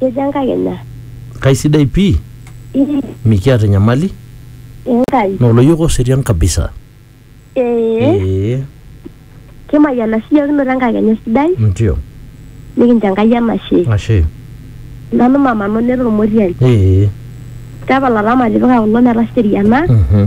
Kejo Enkai ina. Kaisidai pii, Ii, mikiata enyamali, Enkai. naa oloyiok oserian kabisa. Ee, Ee, kimayiana siyiok kinoto enkakenya sidai, ndio. nikincho Enkai enashe. Ashe. Nanu mama Noneta Ormotiai. Ee. Tapala taama tipika kulo metaseriana. Mhm.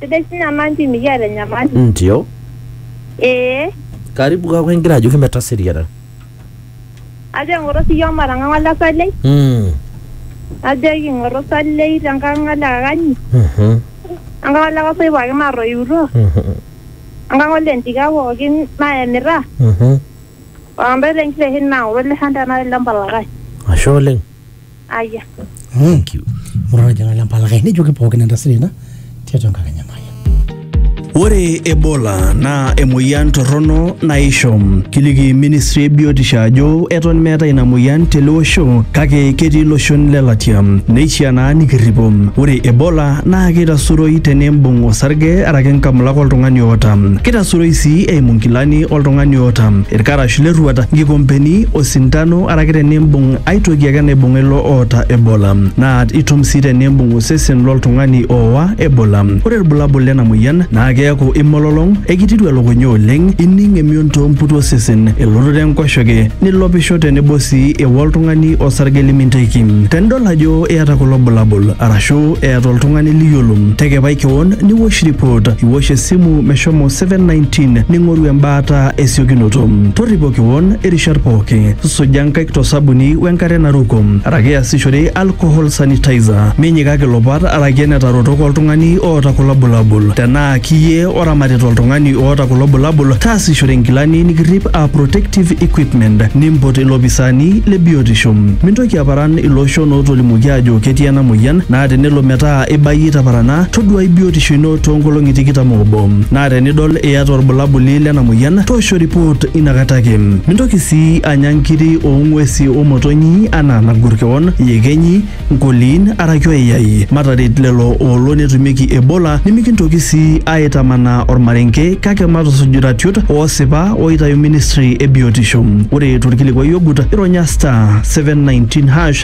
Sidai sii nyamanti mikiata enyamali. Ndio. Ee. Karibu kaaku ingira ajoki metaseriana. Ajo eng'oro sii iyiook matang'ang'a ole salei. Mm. Ajo king'oro salei te nkang ole kakanyi. Mhm. Enkang ole kosoi pookin natoiutuo. Mhm. Enkang ole ntika pookin nayemita. Mhm. Ontae le nkiteshen naa ng'ole shan tenakata le mpalakash. Ashe oleng. Aya. Thank you. Murara jana le mpalakai nejoki pookin entasati ina tiatua enkakenya maya. Ore Ebola naa emoyian torrono naisho. Kiliki ministry e biotisho ajo eton meetae ina moyian tele osho kake ketii iloshon le latia. Neishiaa naa nikirripo. Ore Ebola naa keitasuroi tenimbung osarge araki nkamulak oltung'ani oota. Keitasuroi sii eimu nkilani oltung'ani oota, irkarash lerruat, nkikompeni, osindano araki tenimbung ai toki ake naibung'a ilo oota Ebola, naa itum sii tenimbung osesen loltung'ani oowa Ebola. Ore ilbulabul lena moyian naa keaku imololong, ekitiru elukunya oleng, ining emion too mputu osesen, elototo enkoshoke, nilopisho tenebo sii ewa oltung'ani osarge liminteki. Tenidol ajo iyata kulo bulabul arashu eeta oltung'ani liyiolo, tekepai kewon niwosh report, iwosh esimu meshomo 719 ning'oru embaata esiokinoto. Torripo. Kewon irishat pooki. Suja nkaik to sabuni we nkare naruko araki easishore alcohol sanitizer. Minyikaki ilopat araki enetarotok oltung'ani oota kulo bulabul. Tenaa kiyie oramatita oltung'ani oota kulo bulabul, taasishore nkilani nikirrip aa protective equipment nimpot ilopisaani le biotisho. Mintoki aparan ilooshon ootolimuoki aajo ketii ena moyian naa tenelo metaa ibayie itaparana, toduai biotisho ino toonkolong'i tikitam oobo naa tenidol iyata olbulabuli lena moyian toosho ripoot inakata ake. Mintoki sii anya nkiri oo ng'uesi o motonyi anaa nagor kewon, iyekenyi, nkoliin araki oyayai. Mataret lelo oolo netumieki Ebola nimikintoki sii aaitamanaa olmarenke kake matusuj iratiot oosipa ooitayu ministri e biotisho. Ore tolkilikuai ogut, ironya *719#.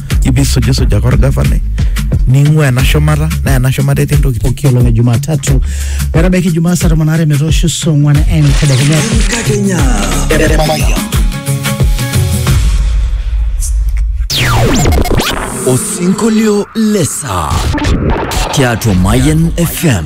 ibisujisujaka orgavanai ning'ua ena shumata naa ena shumata etii ntokitin pooki olong e Jumatatu metabaiki Jumaa saa tomon aare metoosho saa ong'wan entedekenya. Enkakenya. Osinkolio lesa tiatua Mayan FM.